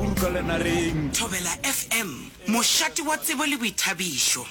o rukalela reng? Thobela FM, mošate wa tsebo le boithabišo.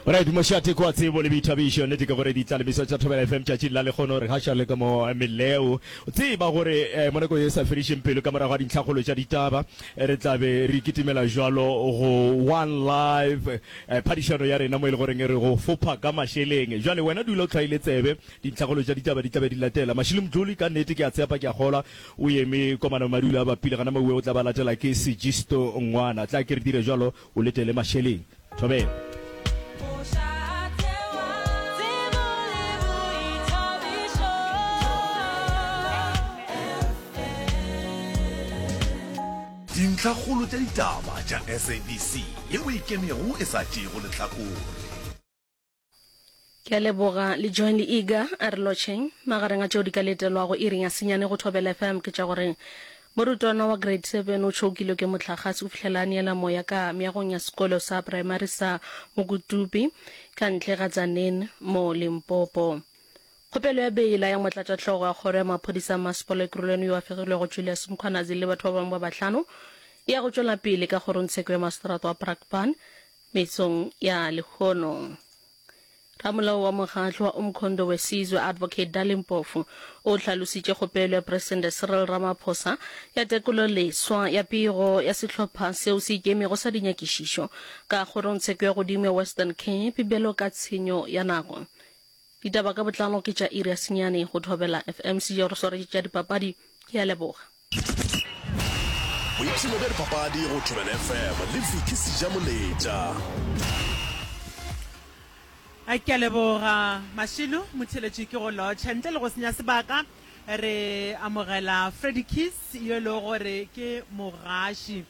Alright, mošate kwa tsebo le boithabišo. Nnete ke gore ditlalemiso tša Thobela FM tšatšing la lekgono re gaša le ka mo meleo. Tseba gore eh, mo nako ye sa fedišeng pelo ka morago ga dintlhakgolo tša ditaba re tla be re kitimela jwalo go One Life Phadišano ya rena mo e le goreng e re go fopha ka mašeleng. Bjale, wena dula o tlhwaile tsebe. Dintlhakgolo tša ditaba di tla be di latela. Mašilomdloli, ka nnete, ke a tshepa ke a kgolwa o eme kwa Manamadula a bapile, gana maue o tla ba latela ke Sigisto Ngwana. Tla ke re dire bjalo, o letele mašeleng. Thobela. Dintlhakgolo tša ditaba tša SABC ye o e kenego e sa tšeego lehlakore. Ke a leboga le Join le Iga a re lotšheng. Magareng a tšeo di ka letelwago iring ya senyane go Thobela FM ke tša gore morutwana wa Grade Seven o tšhokilwe ke mohlagase go fihlela a neela moya ka meagong ya sekolo sa praemari sa Mokutupi ka ntle ga Tzaneen mo Limpopo. Kgopelo ya beila ya motlatšahlogo ya kgoro ya maphodisa a masepala Ekurhuleni yo a fegilwego Julius Mkhwanazi le batho ba bangwe ba bahlano e ya go tšwela pele ka kgorongtsheko ya maseterata wa Brakpan metsong ya lehono. Ramolao wa mokgahlo wa Umkhondo Wesizwe, Advocate Darley Mpofu, o hlalositše kgopelo ya Presidente Cyril Ramaphosa ya tekolo leswa ya pego ya sehlopha seo se ikemego sa dinyakišišo ka kgorongtsheko ya godimo ya Western Cape bjalo ka tshenyo ya nako. Ditaba ka botlalo ke tša iri ya senyane go thobela FM. Sejo re swaretše tša dipapadi. Ke a leboga. Boipshino bja dipapadi go thobela FM le Vicky Sejamoletša. A ke a leboga Mashilo motheletši ke go lotšha ntle le go senya sebaka re amogela Freddy Kiss yo e lego gore ke mogaši.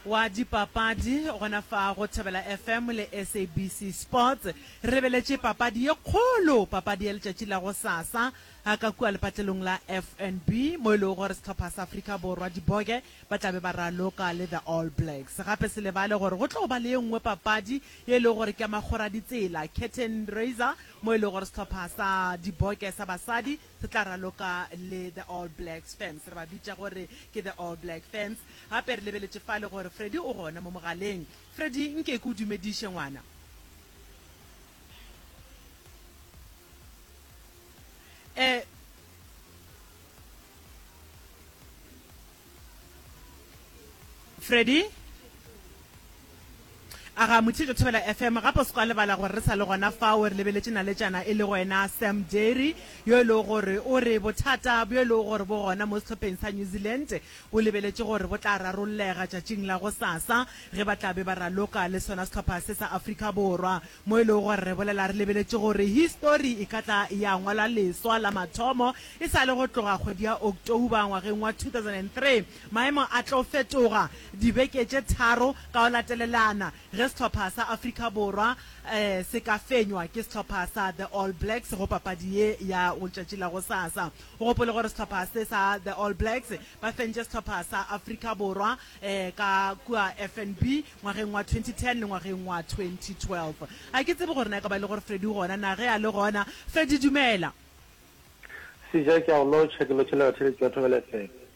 wa dipapadi gona fa go Thobela FM le SABC Sports. Re beletše papadi ye kgolo, papadi ya letšatši la go sasa a ka kua lepatlelong la FNB mo e lego gore sehlopha sa Afrika Borwa Diboge ba tla be ba raloka le The All Blacks. Gape se lebale gore go tlo ba le ye nngwe papadi ye e lego gore ke ya makgoraditsela, curtain raiser, mo e lego gore sehlopha sa Diboge sa basadi Se tla raloka le The All Blacks Fans. Re ba bitša gore ke The All Black Fans. Gape re lebeletše fale gore Freddie o gona mo mogaleng. Freddie, nke ke o dumediše, ngwana. Eh, Freddy a ga mothietšo thobela fm gape o se kwa lebala gore re sa le gona fao re lebeletše naletšana e le go ena sam dairy yo e lego gore o re bothata bjo e lego gore bo gona mo sehlopheng sa new zealand o lebeletše gore bo tla rarollega tšatšing la go sasa ge ba tla be ba raloka le sona sehlopha se sa afrika borwa mo e lego gore re bolela re lebeletše gore histori e ka tla ya ngwalwa leswa la mathomo E sa le go tloga kgwedi ya October ngwageng wa 2003, maemo a tlo fetoga dibeke tše tharo ka go latelelana ge sehlopha sa Afrika Borwa se ka fenywa ke sehlopha sa The All Blacks go papadi ye ya letšatši la gosasa. O gopole gore sehlopha se sa The All Blacks ba fentše sehlopha sa Afrika Borwa ka kua FNB ngwageng wa 2010 le ngwageng wa 2012. Ga ke tsebe gore na e ka ba e le gore Freddy o gona na. Ge a le gona, Freddy, dumela. Sija, ke a go lotšha, ke lotšhela batheletši ba Thobela FM.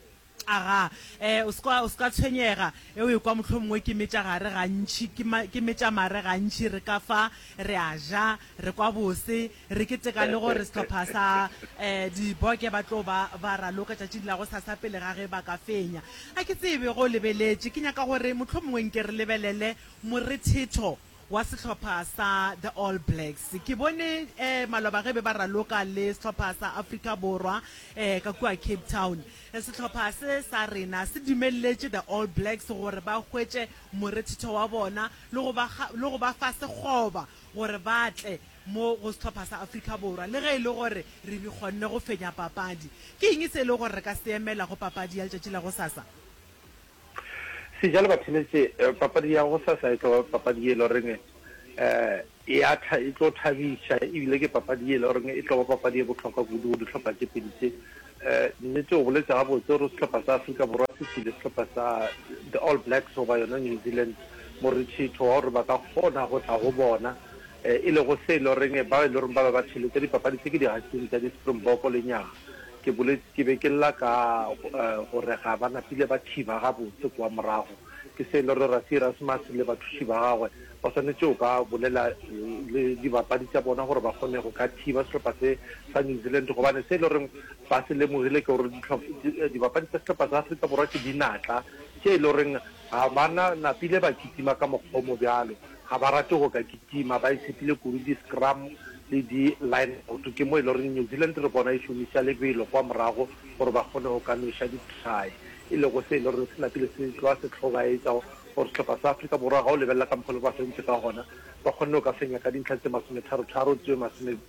Aga, e, o se ka, o se ka tshwenyega, e, o ekwa mohlomongwe ke metša gare gantši, ke ma, ke metša mare gantši, re ka fa, re a ja, re kwa bose, re keteka le gore sehlopha sa, e, di-Bokke ba tlo ba, ba raloka tšatšing la gosasa pele ga ge ba ka fenya. Ga ke tsebe ge o lebeletše, ke nyaka gore mohlomongwe nke re lebelele morethetho wa sehlopha sa The All Blacks. Ke bone eh, maloba ge be ba raloka le sehlopha sa Afrika Borwa eh, ka kua Cape Town. Eh, sehlopha se sa rena se dumelletše The All Blacks gore ba hwetše morethetho wa bona le go ba ga- le go ba fa sekgoba gore ba tle mo go sehlopha sa Afrika Borwa le ge e le gore re re kgonne go fenya papadi. Ke eng se e le gore re ka se emela go papadi ya letšatši la go sasa? Sejalo ba theletše papadi ya go sasa e tlo papadi e le goreng ya tha e tlo thabiša ebile ke papadi e le goreng e tlo ba papadi e bohlokwa kudu go dihlopha tše pedi tše nnete o boletse gabotse gore sehlopha sa Afrika Borwa se tsile sehlopha sa the All Blacks goba yona New Zealand morethetho wa gore ba ka kgona go tla go bona e lego se e le goreng ba e le goreng ba be ba theletša dipapadi tse ke digasing tša di-Springbok lenyaga Ke boletše ke be ke lla ka gore ga ba napile ba thiba gabotse kua morago. Ke se e le gore Rassie Erasmus le bathuši ba gagwe ba swanetše go ka bolela le dibapadi tša bona gore ba kgone go ka thiba sehlopha se sa New Zealand gobane se e le goreng ba se lemogile ke gore dibapadi tša sehlopha sa Afrika Borwa ke dinatla tše e le goreng ga ba na napile ba kitima ka mokgwa o mo bjalo. Ga ba rate go ka kitima, ba isitile kudu di-scrum le di-line-out. Ke mo e le goreng New Zealand re bona e šomiša lebelo kwa morago gore ba kgone go ka nweša di-try, e lego se e le goreng se napile se tloga se hlobaetša gore sehlopha sa Afrika Borwa ga o lebelela ka mokgwa o le ba fentše ka gona, ba kgonne go ka fenya ka dintlha tše masometharo-tharo tše masome.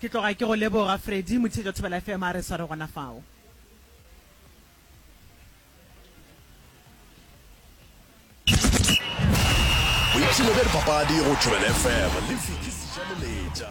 Ke tloga ke go leboga Freddy Motheetša Thobela FM a re sware gona fao. Boipshino bja dipapadi go Thobela FM le Vicky Sejaleletša.